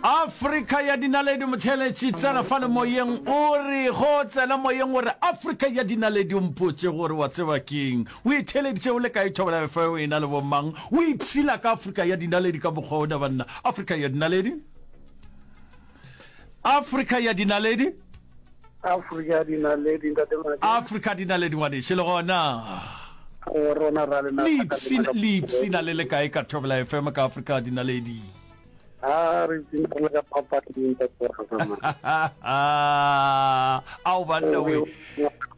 afrika ya dinaledi motheletši tsena fa le moyeng o re go tsena moyeng o re afrika ya dinaledi o mpotse gore wa tseba keng o itheleditše o le ka ithobela fe o ena le bomang o ipshila ka afrika ya dinaledi ka mokgwa o da banna afrika ya dinaledi afrika ya dinaledi afrika ya dinaledi ntate madi afrika ya dinaledi ngwaneše le gona o rona ra lena lipsina le le kae ka thobela fm ka afrika ya dinaledi a re tsina re ka papading ka tsoga ao banna we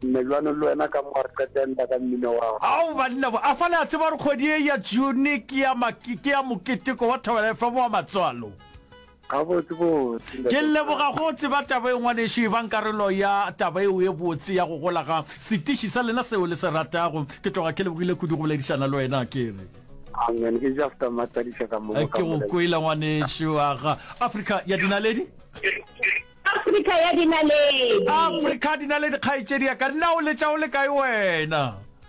melwane le wena ka mo re qetenda ka mmino wa ao banna a fa le a tseba re kgwedi e ya june ke ya makete ya moketeko wa thobela fm wa matswalo Gabotsebotse. Ke leboga go tseba taba e ngwanešu, ebang karolo ya taba yeo e botse ya go gola ga setiši sa lena seo le se ratago. Ke tloga ke lebogile kudu go boledišana le wena, ke re. Amen, ke just a matsadiša ka mo go ka molela. Ke go kwele ngwanešu, aga Afrika ya dinaledi. Afrika ya dinaledi. Afrika dinaledi kgaetšedi ya ka, na o letša o le kae wena?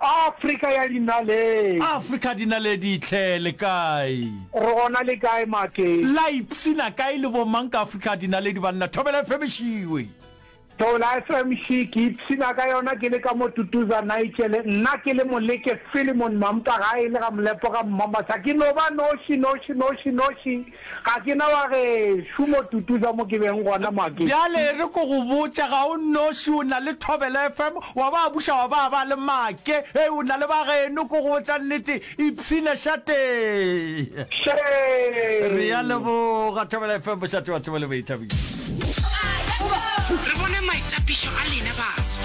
Afrika ya dinaledi. Afrika ya dinaledi tlhe, le kae? Re gona le kae Maki? La ipsina kae le bo mang ka Afrika ya dinaledi banna? Thobela FM Šiwe. Thobela FM Shi, ke ipsina ka yona ke le ka mo Tutuza Nigele. Nna ke le Moleke Philemon Mampa gae le ga Molepo ga Mmamasa. Ke no ba noši, noši, noši, noši. Ga ke na wa gešo mo Tutuza mo ke beng gona mo Akedi. Bjale e re ko go botše, ga o nnoši, o na le Thobela FM, wa ba buša wa ba ba le make, hei, o na le ba geno, ko go botša nnete, Ipshine Shatee. Shame! Re ya leboga, Thobela FM, Bošate wa Tsebo le Boithabišo. Re bone maitapišo a lena baso.